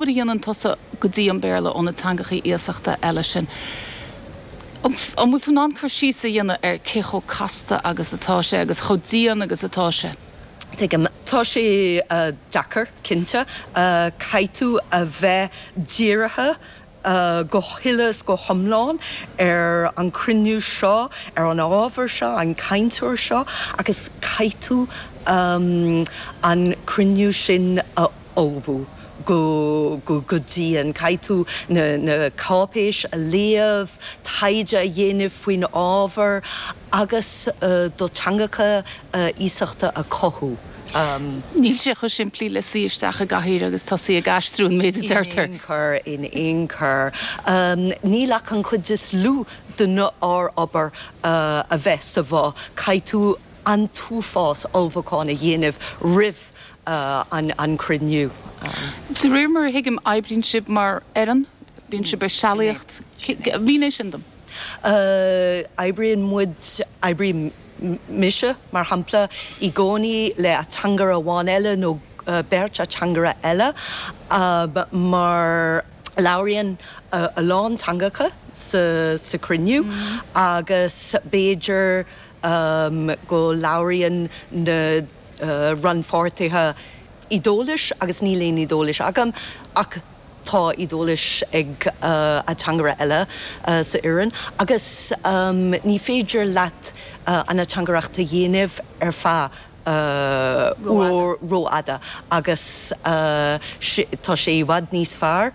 Nuair a dhéanann tusa go dtí an Béarla ó na teangachaí iasachta eile sin, an bhfuil tú in ann cur síos a dhéanamh ar cé chomh casta agus atá sé agus chomh dian agus atá sé? Tuigim. Tá sé deacair, cinnte. Caithfidh tú a bheith dírithe go huile is go hiomlán ar an chruinniú seo, ar an ábhar seo, an cainteoir seo agus caithfidh tú an cruinniú sin a ullmhú go go dian. Caithfidh tú na na cáipéisí a léamh, taighde a dhéanamh faoin ábhar agus do teangacha iasachta a chothú. Níl sé chomh simplí le suí isteach i gcathaoir agus tosú ag aistriú an méid a deirtear. In aon chor, in aon chor. Níl ach an chuid is lú de na ár obair a bheith sa bhoth. Caithfidh tú. an t-uafás ullmhúcháin a dhéanamh roimh an gcruinniú. De réir mar a thuigim, oibríonn sibh mar fhoireann, bíonn sibh ag sealaíocht. Mínigh sin dom. Oibríonn muid, oibrím mise mar shampla, i gcónaí le ateangaire amháin eile nó beirt ateangaire eile mar labhraíonn siad a lán teangacha sa chruinniú agus b'fhéidir, ii, go labhraíonn na rannpháirtithe Iodáilis agus níl aon Iodáilis agam ach tá Iodáilis ag ateangaire eile sa fhoireann agus ní féidir leat an ateangaireacht a dhéanamh ar feadh uair rófhada agus tá sé i bhfad níos fearr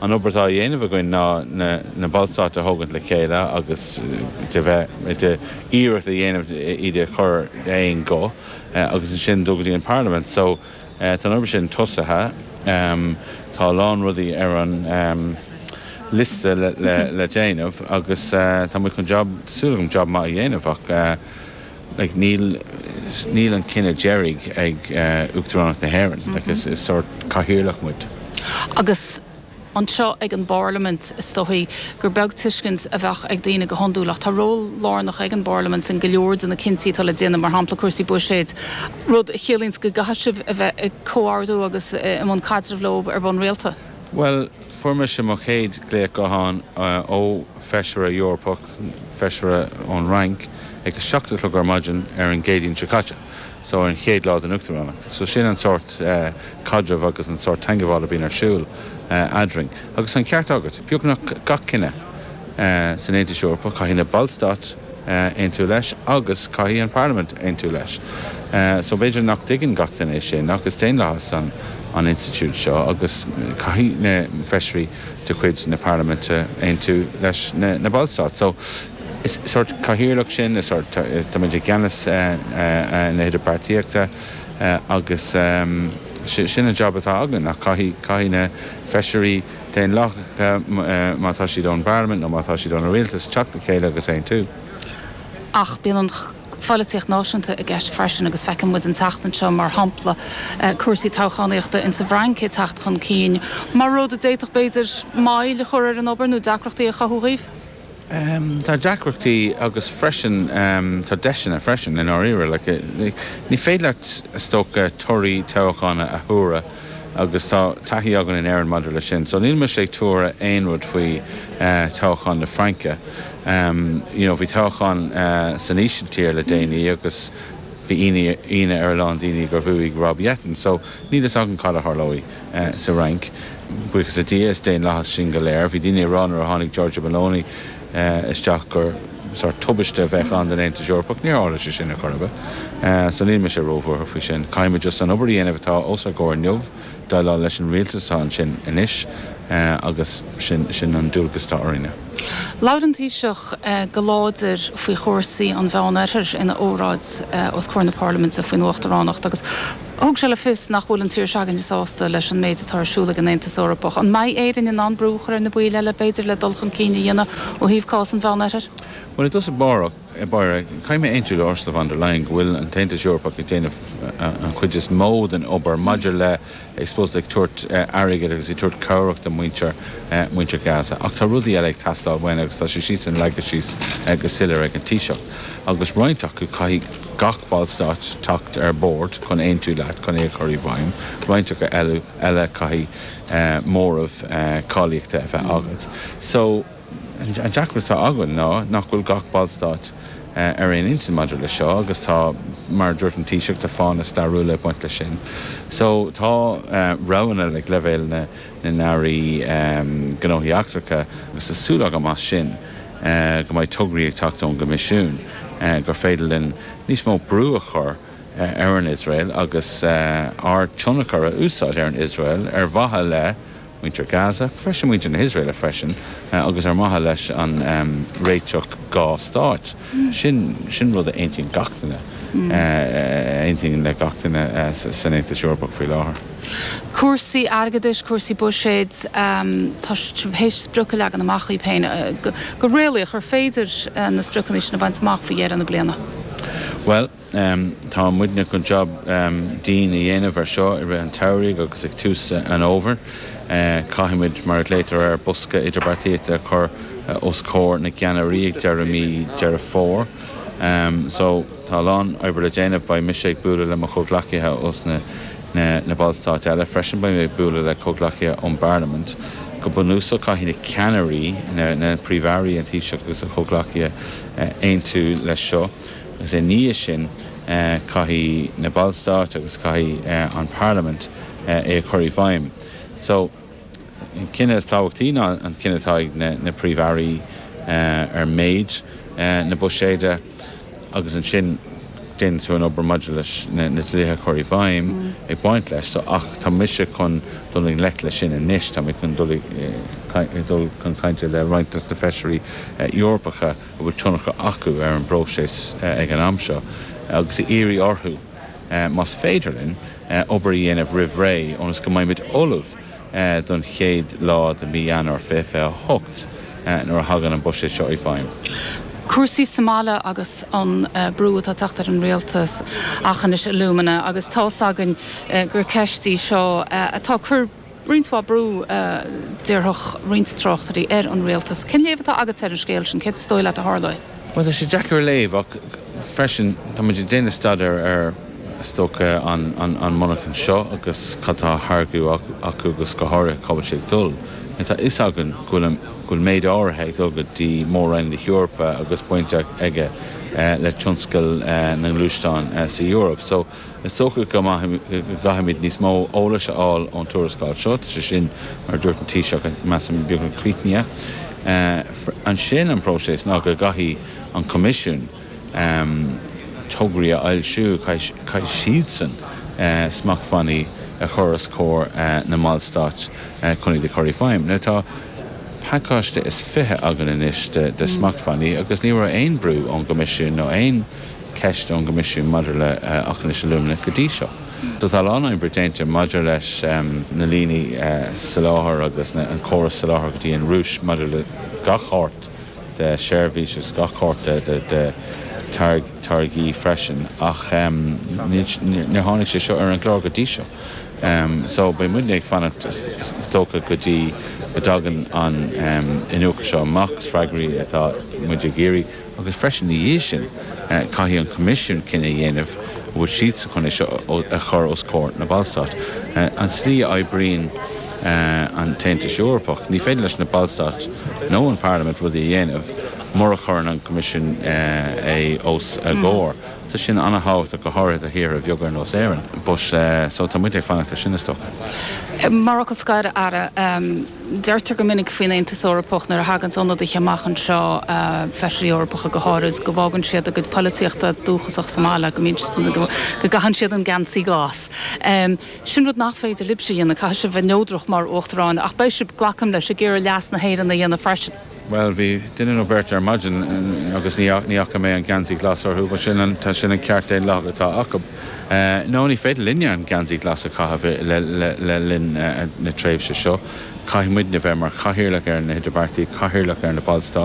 An obair atá á dhéanamh againn ná na ballstáit a thógaint le chéile agus de bheith de iarracht a dhéanamh iad a chur d'aon ghuth agus ansin dul go dtí an Pharlaimint. So tá an obair sin tosaithe. Tá a lán rudaí ar an liosta le déanamh agus tá muid chun job, tá súil agam job maith a dhéanamh as. like níl, níl an cinneadh deiridh ag Uachtaránacht na hÉireann, like is, is sórt cathaoirleach muid. Agus anseo ag an bParlaimint, is dóigh gur beag tuiscint a bheadh ag daoine go hiondúil, ach tá ról lárnach ag an bParlaimint in go leor de na cinntí atá le déanamh, mar shampla cúrsaí buiséid, rud a chiallaíonns go gcaithfidh sibh a bheith ag comhordú agus i mbun caidrimh leo ar bhonn rialta. Bhuel, fuair mise mo chéad glaoch gutháin ó Fheisire Eorpach. Feisire ón Fhrainc ag a seacht a chlog ar maidin ar an gCéadaoin seo caite, so ar an chéad lá den Uachtaránacht. So sin an sórt caidreamh agus an sórt teagmháil a bhíonn ar siúl eadrainn. Agus tá an ceart agat, beagnach gach cinneadh san Aontas Eorpach, caithfidh na ballstáit aontú leis agus caithfidh an Pharlaimint aontú leis. So b'fhéidir nach dtuigeann gach duine é sin ach is daonlathas an institiúid seo agus caithfidh na feisirí de chuid na Parlaiminte aontú leis na Ballstáit. So is sórt cathaoirleach sinn, is sórt, tá muid i gceannas na hidirbheartaíochta agus sin an jab atá againn. Ach caithfidh na feisirí daonlathacha, má tá siad ón bParlaimint nó má tá siad ó na rialtais, teacht le chéile agus aontú. Ach bíonn an. pholaitíocht náisiúnta i gceist freisin agus feiceann muid an tseachtain seo, mar shampla, cúrsaí toghchánaíochta in sa bhFrainc ag teacht chun cinn mar rud a d'fhéadfadh, b'fhéidir, moill a chur ar an obair nó deacrachtaí a chothú dhaoibh? Tá deacrachtaí agus freisin tá deiseanna freisin, i ndáiríre. Ní féidir leat, is dócha, torthaí toghchána a thuaradh. agus tá taithí againn in Éirinn maidir leis sin so níl mise ag tuaradh aon rud faoi toghchán na Fraince you know bhí toghchán san Ísiltír le déanaí agus bhí ionadh ar a lán daoine gur bhuaigh Rob Jetten so níl a fhios againn cad a tharlóidh sa Fhrainc buíochas le Dia is daonlathas sinn go léir bhí daoine ag rá nuair a tháinig Giorgia Meloni isteach gur sórt tubaiste a bheadh ann don Aontas Eorpach. Níor tharla sé sin ar chor ar bith. So níl mise róbhuartha faoi sin. Caithfimid just an obair a dhéanamh atá os ár gcomhair inniu, déileáil leis an rialtas atá ansin anois agus sin an dualgas atá orainne. Labhair an Taoiseach go láidir faoi chúrsaí an Mheánoirthir ina óráid os comhair na Parlaiminte faoin Uachtaránacht agus, Thug sé le fios nach bhfuil an tír s'againne sásta leis an méid atá ar siúl ag an Aontas Eorpach. An mbeidh Éirinn in ann brú a chur ar na baill eile, b'fhéidir, le dul chun cinn a dhéanamh ó thaobh cás an Mheánoirthir? Bhuel, i dtosach báire, caithfidh mé aontú le Ursula von der Leyen go bhfuil an tAontas Eorpach ag déanamh an chuid is mó den obair maidir le, I suppose, ag tabhairt airgid agus ag tabhairt cabhrach do mhuintir Gaza. Ach tá rudaí eile ag teastáil uainn agus tá sé, siadsan leagtha síos go soiléir ag an Taoiseach. Agus roinnt acu, caithfidh. gach Ballstát teacht ar bord chun aontú leat chun é a chur i bhfeidhm, roinnt acu eile caithfidh móramh cáilíochta a bheith agat. So, an deacracht atá againn ná nach bhfuil gach Ballstát ar aon intinn maidir leis seo agus tá, mar a dúirt an Taoiseach, tá fáthanna stairiúla ag baint leis sin. So, tá roghanna ag leibhéal na nAirí Gnóthaí Eachtracha agus tá súil agam as sin. go mbeidh tograí ag teacht ón gCoimisiún gur féidir linn níos mó brú a chur ar an Iosrael agus ár dtionchar a úsáid ar an Iosrael ar mhaithe le muintir Gaza, freisin muintir na hIosrael freisin, agus ar mhaithe leis an réiteach dhá stáit. Sin rud a aontaíonn gach duine, a aontaíonn le gach duine san Aontas Eorpach faoi láthair. Cúrsaí airgeadais, cúrsaí buiséid, tá siad tar éis sprioc a leagan amach díbh féin, go réalaíoch, ar féidir na spriocanna sin a bhaint amach faoi dheireadh na bliana? Bhuel, tá muidne chun jab dian a dhéanamh air seo i rith an tsamhraidh agus ag tús an fhómhair. Caithfidh muid, mar a ghlaotar air, bosca idirbheartaíochta a chur os comhair na gceannairí ag deireadh mhí Deireadh Fómhair. So tá a lán oibre le déanamh, beidh mise ag bualadh le mo chomhghleacaithe ós na na Ballstáit eile freisin. Beidh mé ag bualadh le comhghleacaithe ón bParlaimint. Go bunúsach, caithfidh na ceannairí, na Príomh-Airí, an Taoiseach agus a chomhghleacaithe aontú leis seo agus ina dhiaidh sin caithfidh na Ballstáit agus caithfidh an Parlaimint é a chur i bhfeidhm. An cinneadh is tábhachtaí ná an cinneadh atá ag na Príomh-Airí ar méid na buiséide agus ansin déanann tú an obair maidir leis na dlíthe a chur i bhfeidhm ag baint leis, so, ach tá mise chun dul i ngleic leis sin anois, tá mé chun dul chun cainte le roinnt dos na Feisirí Eorpacha a bhfuil tionchar acu ar an bpróiseas ag an am seo agus a iarraidh orthu. más féidir linn obair a dhéanamh roimh ré ionas go mbeimid ullamh don chéad lá de mhí Eanáir 2028 nuair a thagann an buiséad seo i bhfeidhm. Cúrsaí sa mbaile agus an brú atá ag teacht ar an rialtas Aughinish Alumina agus tá's againn gur ceist í seo atá ag cur. roinnt mhaith brú, déarfadh roinnt tráchtairí, ar an rialtas. Cén léamh atá agatsa ar an scéal sin? Céard is dóigh leat a tharlóidh? Bhuel, tá sé deacair a léamh ach freisin tá muid ag déanamh staidéir ar, is dócha, an monarchan seo agus cad atá á tháirgeadh acu agus go háirithe cá bhfuil sé ag dul. Tá a fhios againn go bhfuil méid áirithe ag dul go dtí mór-roinn na hEorpa agus baint aige le tionscal na ngluaisteán sa Eoraip. Is dócha go gcaithfimid níos mó eolais a fháil ón tuarascáil seo, tá sé sin, mar a dúirt an Taoiseach, measaim, beagnach críochnaithe. Ansin an próiseas ná go gcaithfidh an Coimisiún tograí a fhoilsiú, caithfidh siadsan smachtbhannaí a chur os comhair na mballstáit chun iad a chur i bhfeidhm. Now tá pacáiste is fiche againn anois de smachtbhannaí agus ní raibh aon bhrú ón gCoimisiún nó aon ceist ón gCoimisiún maidir le Aughinish Alumina go dtí seo. Só tá a lán oibre déanta maidir leis na líní soláthair agus an córas soláthair go dtí an Rúis maidir le gach shórt de sheirbhís agus gach shórt de táirgí freisin ach níor tháinig sé seo ar an gclár go dtí seo só beidh muidne ag fanacht is dócha go dtí go dtagann an iniúchadh seo amach. Is freagraí atá muid ag iarraidh. agus freisin ina dhiaidh sin, caithfidh an Coimisiún cinneadh a dhéanamh an bhfuil siad sásta é seo a chur os comhair na mBallstát. An tslí a oibríonn an tAontas Eorpach, ní féidir leis na Ballstáit nó an Pharlaimint rudaí a dhéanamh mura chuireann an Coimisiún é os a gcomhair. Tá sin an-tábhachtach, go háirithe do thíortha bheaga ar nós Éirinn. Tá muid ag fanacht ar sin, is dócha. Mar fhocal scoir, a Aire. Deirtear go minic faoin Aontas Eorpach nuair a theaganns ionadaithe amach anseo, Feisirí Eorpacha go háirid, go bhfágann siad a gcuid polaitíochta dúchasach sa mbaile, go mbíonn siad, go gcaitheann siad an geansaí glas. Sin rud nach féidir libhse a dhéanamh, caithfidh sibh bheith neodrach mar Uachtaráin ach beidh sibh, glacaim leis, ag iarraidh leas na hÉireann a dhéanamh freisin. Bhuel, bhí duine nó beirt ar maidin agus ní fhaca mé an geansaí glas orthu, bhuel sin an, sin an ceart daonlathach atá acu. No, ní féidir linne an geansaí glas a chaitheamh le linn na tréimhse seo, caithfidh muidne bheith mar chathaoirleach ar na hidirbheartaí, cathaoirleach ar na ballstáit.